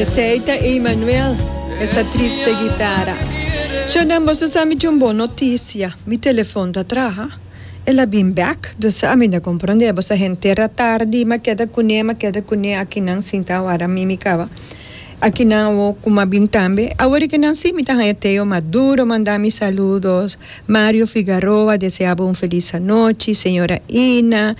Esei ta Emanuel, e sa triste gitara. Chonan, boso a sa mi tin un bon notisia. Mi telefon ta traha. El a bin bèk. Dus ami ta komprondé. Boso a henter ta tardi. M'a keda kuné, m'a keda kuné. Akinan sinta awara mi, mi kaba. Akinan awo ku m'a bin tambe. Awor i ke nan sí, mi ta haña Teo Maduro manda mi saludos. Mario Figaroa desea bo un felis anochi. Señora Ina,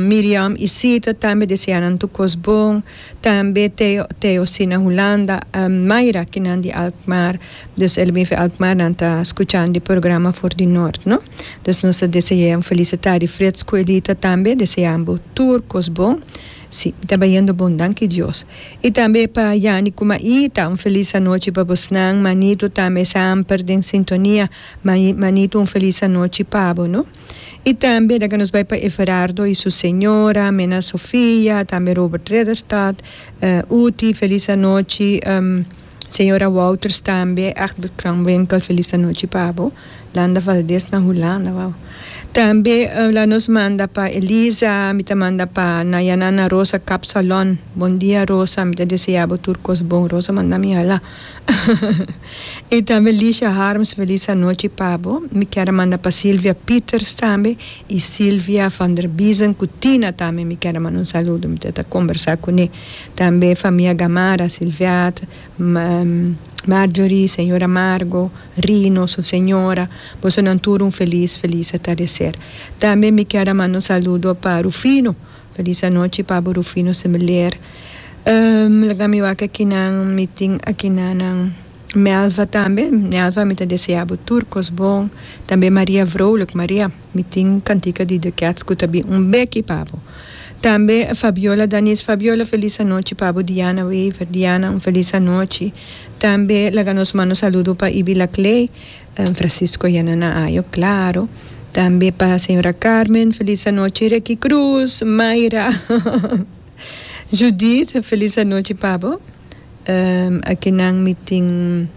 Miriam Isita tambe desea nan tur kos bon. Tambe Theo, Theo Sina Hulanda, en Mayra kinan di Alkmaar, dus el a bin fe Alkmaar nan ta skuchan di programa for di Nort no. Dus nos ta deseaen felisita di Fred Scuelita tambe, deseambo tur kos bon. Si, mi ta bai yendo bon danki Dios. I tambe pa Yani ku Maita, un felis anochi pa bosnan, Manito tambe es amper den sintonia, Manito un felis anochi pabo no. I tambe na ke nos bai pa Everardo i su señora, Mena Sofia, tambe Robert Rederstad, Uti, felis anochi, señora Wouters tambe, Egbert Kranwinkel, felis anochi pa bo, Landa Valdez na Hulanda, wou. Tambe la nos manda pa Elisa, mi ta manda pa Nayanana Rosa Kapsalon, bon dia Rosa, mi ta desea bo tur kos bon, Rosa manda mi hala. y tambe Lisha Harms felis anochi pa bo mi kier a manda pa Silvia Pieters tambe y Silvia van der Biesen cu Tina tambe mi kier a manda un saludo mi ta combersa cune tambe famia Gamara Silviat Marjorie señora Margo Rino su señora bosonan tur un felis felis atardecer tambe mi kier a manda un saludo pa Rufino Feliz anochi pabo Rufino Similer um laga mi wak akinan mi tin akinanan Melva tambe Melva mi ta desea bo tur kos bon tambe Maria vrolijk Maria mi tin kantika di The Cats ku ta bin un beki pa bo tambe Fabiola Danis Fabiola feliz anochi pa bo Diana Wever Diana un feliz anochi tambe laga nos manda un saludo pa Ibi Laclay. Francisco Yana na ayo claro. Tambe pa señora Carmen feliz anochi Reki Cruz, Mayra Judith feliz anochi pa bo. Um, akinan mi tin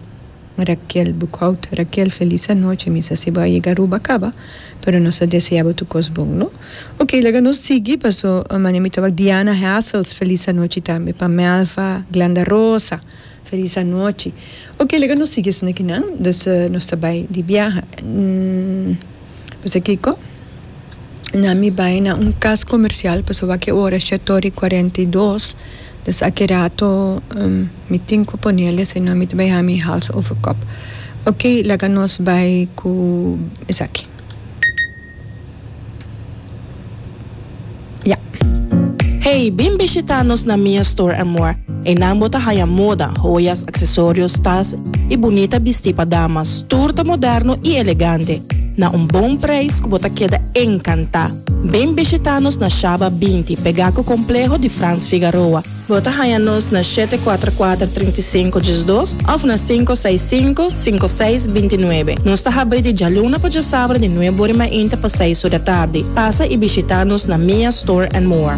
Raquel Buckout, Raquel feliz anochi mi sa si bo a yega Aruba caba pero nos ta desea bo tur cos bon no. Ok laga nos sigui paso mane mi tabak Diana Hassels feliz anochi tambe pa Melva Glanda Rosa. Felis anochi. Ok, laga nos sigui esnan aki nan, dus nos ta bai di biaha. Pasobra kiko? Nan mi bai na un kas komersial, pasobra aki e ora shèt ora i kuarenta i dos, dus aki rato mi tin ku ponel esei, nò mi ta bai hami hals over kòp. Ok, laga nos bai ku esaki. Hey, bin bishitá nos na Mia Store Amor. Einan bo ta haya moda, hoyas, aksesorios, tas i bunita bistí pa damas, tur ta moderno i elegante, na un bon preis ku bo ta keda enkantá. Bin bishitá nos na Shaba binti, pegá ku kompleho di Frans Figaroa. Bo ta haña nos na shete kuater kuater trinta i sinku djes dos òf na sinku seis sinku sinku seis binti nuebe. Nos ta habri di djaluna pa djasabra di nuebe orimainta pa seis ur di tardi. Pasa i bishitá nos na Mia Store and More.